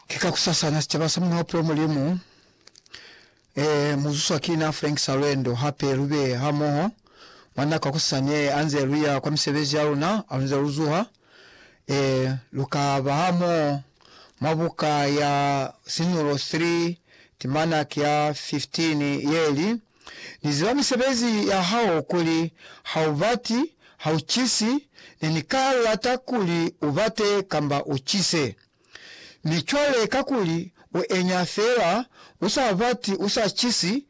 Ki kakusasana sicaba sa muna bupilo Mulimu e muzuswa ki na Frank Salwendo. Hape lube hamoho mwa nako ya kusasani ye anze luya kwa misebezi yaluna. Halunze luzuha e luka ba hamoho mwa buka ya sinulo 3 timana ki ya 15 yeli. Ni ziba misebezi ya hao kuli ha u bati, ha u cisi, ne ni ka lata kuli u bate kamba u cise. Mi cwale kakuli u enya fela, u sa bati, u sa cisi,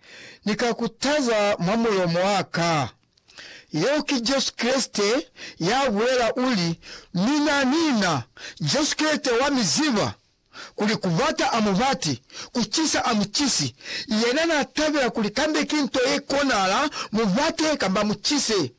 Ni ka ku taza mwa mulomo wa ka. Yeo ki Jesu Kreste ya bulela, uli, Mina, mina, Jesu Kreste wa mi ziba. kuli kubata a mubati, kucisa a mucisi, yena na tabela kuli kambe ki nto ye konahala mubate kamba mucise.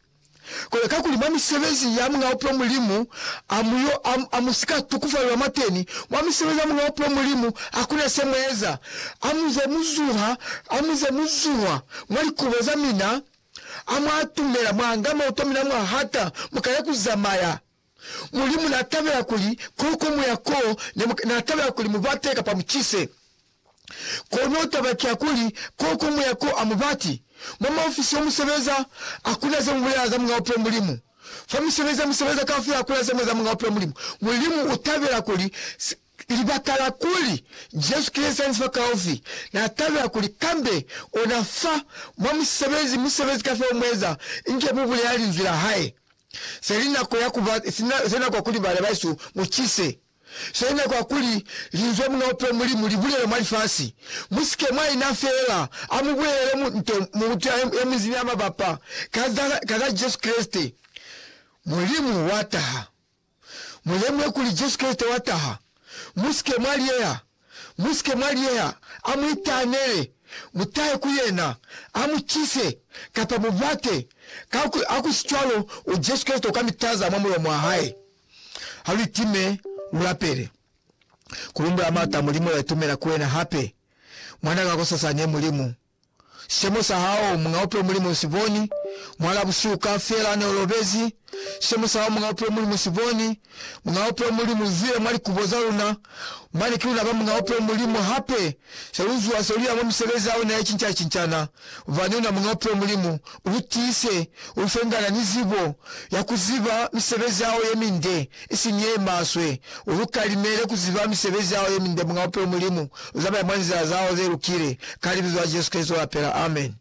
Kono kakuli mwa misebezi ya Muñ'a Bupilo Mulimu a mu yo, a, a mu si ka tukufalelwa mwateni. Mwa misebezi ya Muñ'a Bupilo Mulimu hakuna se mu eza. A mu ze mu zuha, a mu ze mu zuha mwa likubo za mina, a mwa atumela, mwa nga mauto a mina mwa hata, mu kale ku zamaya. Mulimu n'a tabela kuli ko ko mu ya ko ne mu, n'a tabela kuli mu bate kapa mu cise. Kono taba ki ya kuli, ko ko mu ya ko a mu bati. Mwa maofisi yo mu sebeza, ha ku na ze mu bulela za Muñ'a Bupilo Mulimu. Fa misebezi ye mu sebeza kaufela ha ku na ze mu eza Muñ'a Bupilo Mulimu. Mulimu u tabela kuli si, Ki libakala kuli, Jesu ki Liezaniso la kaufi, na tabela kuli kambe ona fa mwa musebezi, musebezi kafela umueza, inge mu bulela Linzwi la Hae. Se li nako ya kuba, se nako ya kuli bana bahesu mu cise. Se li nako ya kuli Linzwi la Muñ'a Bupilo Mulimu li bulele mwa lifasi. Mu si ke mwa ina feela, a mu bulelele mu, nto, mutu ya, ya minzi ni ya mabapa, ka za, ka za Jesu Kreste, Mulimu wa taha. Mu lemuhe kuli Jesu Kreste wa taha. Mu si ke mwa liyeha. Mu si ke mwa liyeha. A mu itaanele. Mu tahe ku yena. A mu cise, kapa mu bate. Ka ku, ha ku si cwalo, u Jesu Kreste u ka mi taza mwa mulomo wa hae. Ha lu itime, lu lapele. Ku lumbula Marta, Mulimu ya itumela ku wena hape. Mwan'a ka kosasani, Mulimu. Sicemo sa hao, Muñ'a Bupilo Mulimu u si boni, Muhala busihu kaufela ne u lobezi. Sicemo sa hao, Muñ'a Bupilo Mulimu u si boni, Muñ'a Bupilo Mulimu u zwile mwa likubo za luna, mane ki luna ba Muñ'a Bupilo Mulimu. Hape, se lu zuha se lu ya mwa misebezi ya ona ye cinca-cincana, bubani una Muñ'a Bupilo Mulimu, lu tiise, lu fe ngana ni zibo ya ku ziba misebezi ya hao ye minde, isiñi ye maswe. U lu kalimele ku ziba misebezi ya hao ye minde, Muñ'a Bupilo Mulimu. Lu zamaya mwa nzila za hao ze lukile, ka Libizo la Jesu Kreste lu lapela. Amen.